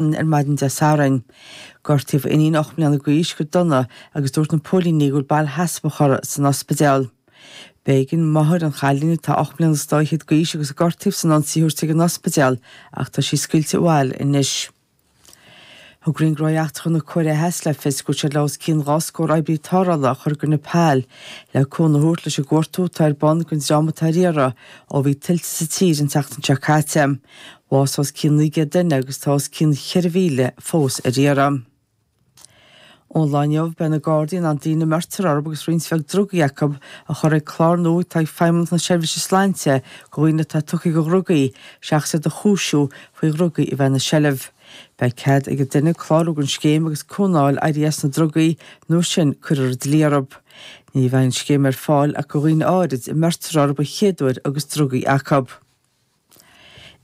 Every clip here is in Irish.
ar maidin Dé Sathairn. Gortaíodh a iníon ocht mbliana d'aois go dona agus dúirt na póilíní go bhfuil bail sheasmhach uirthi san ospidéal. B'éigean máthair an chailín, atá ocht mbliana is dá fhichead d'aois agus a gortaíodh san ionsaí, a thabhairt chuig an ospidéal ach tá sí scaoilte abhaile anois. Thug Roinn Gnóthaí Eachtracha na Cóiré Theas le fios go bhfuil siad le os cionn dhá scór oibrí tarrthála a chur go Nepal le cúnamh a thabhairt leis an gcuartú atá ar bun don dream atá ar iarraidh ó bhí tuilte sa tír an tseachtain seo caite. bhásaigh os cionn 900 duine agus tá os cionn 4,000 fós ar iarraidh. Ón lá inniu beidh na Gardaí in ann daoine a mbeirtear orthu agus roinnt bheag drugaí acu a chur ag clár nua atá ag Feidhmeannacht na Seirbhíse Sláinte do dhaoine atá tugtha do dhrugaí seachas iad a chúisiú faoi dhrugaí a bheith ina seilbh. Beidh cead ag an duine clárú don scéim agus cúnamh a fháil éirí as na drugaí nó sin cuirfear an dlí orthu. Ní bheidh an scéim ar fáil ach do dhaoine áirid a mbeirtear orthu an chéad uair agus drugaí acu.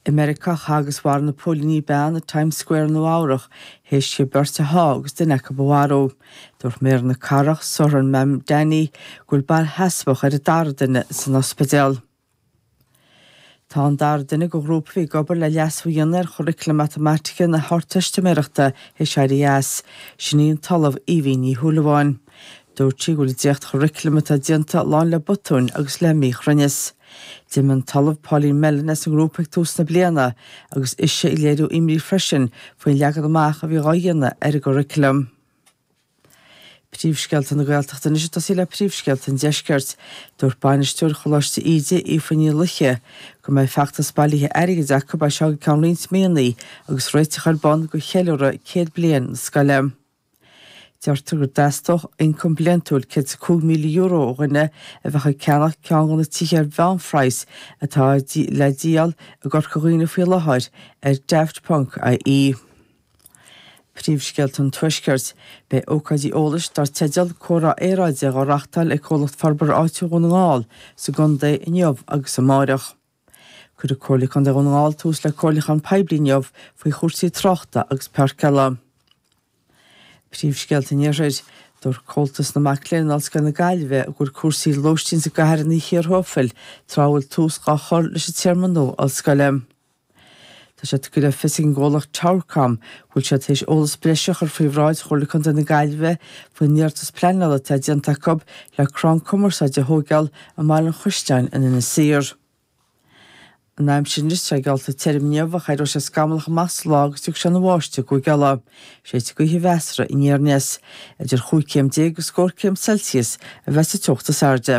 I Meiriceá, chaith agus mharaigh na póilíní bean i Times Square i Nua-Eabhrac théis di beirt a shá agus duine acu a mharú. Dúirt Méara na Cathrach, Zohran Mamdani, go bhfuil bail sheasmhach ar an dara duine san ospidéal. Tá an dara duine den ghrúpa a bhí ag obair le leasú a dhéanamh ar churaclam matamaitice na hArdteistiméireachta théis éirí as. Sin í an tOllamh Aoibhinn Ní Shúilleabháin. Dúirt sí go bhfuil an dréacht-churaclam atá déanta lán le botúin agus le míchruinneas. D'imigh an tOllamh Pauline Mellon as an ngrúpa ag tús na bliana agus ise ag léiriú imní freisin faoin leagan amach a bhí dhá dhéanamh ar an gcuraclam. Príomhscéalta na Gaeltachta anois ag tosaí le príomhscéalta an deiscirt. Dúirt bainisteoir Choláiste Íde, Aoife Ní Laoithe, go mbeidh feachtas bailithe airgid acu as seo go ceann roinnt míonnaí agus réiteach ar bun do cheiliúradh céad bliain na scoile. Deirtear gur dteastódh ioncam bliantúil €105,000 ó dhuine a bheadh ag ceannach ceann de na tithe ar mheánphraghas atá le díol i gCorca Dhuibhne faoi láthair ar Daft.ie. Príomhscéalta an Tuaiscirt. Beidh ócáidí eolais dar teideal 'Comhrá Aeráide' dhá reáchtáil ag Comhlacht Forbartha Áitiúil Dhún na nGall sa gcontae inniu agus amárach. Cuirfidh Comhairle Contae Dhún na nGall tús le comhairliúchán poiblí inniu faoi chúrsaí tráchta agus páirceála. Príomhscéalta an Iarthair. Dúirt Comhaltas na Mac Léinn in Ollscoil na Gaillimhe go bhfuil cúrsaí lóistín sa gcathair ina chíor thuaifil tráth a bhfuil tús dhá chur leis an téarma nua ollscoile. Tá sé tugtha le fios ag an gcomhlacht Towercom go bhfuil siad tar éis eolas breise a chur faoi bhráid Chomhairle Contae na Gaillimhe faoin iarratas pleanála atá déanta acu le crann cumarsáide a thóigeáil i mBaile an Chaisleáin in Inis Oírr. An aimsir anois, atá geallta, tirim inniu ach éireoidh sé scamallach amach sa lá agus tiocfaidh sé ina bháisteach i gCúige Uladh. Séidfidh gaoth mheasartha aniar aneas. Idir chúig chéim déag agus scór céim Celsius a bheas an teocht is airde.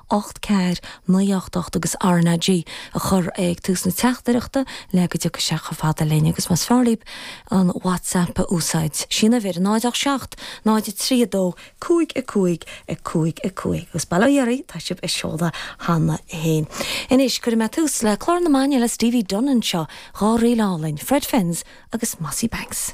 ocht, ceathair, naoi, ocht, ocht agus RnaG a chur ag tús na teachtaireachta le go dtiocfaidh sé chomh fada linn agus más fearr daoib an WhatsApp a úsáid, is í an uimhir ná 0 8 7 0 3 2 5 5 5 5 agus bail ó Dhia tá sibh á seoladh cheana féin. Anois, cuirfidh mé tús le clár na maidine le Stevie Dunne anseo, dhá ríl álainn, Fred Finn's agus Mossy Banks.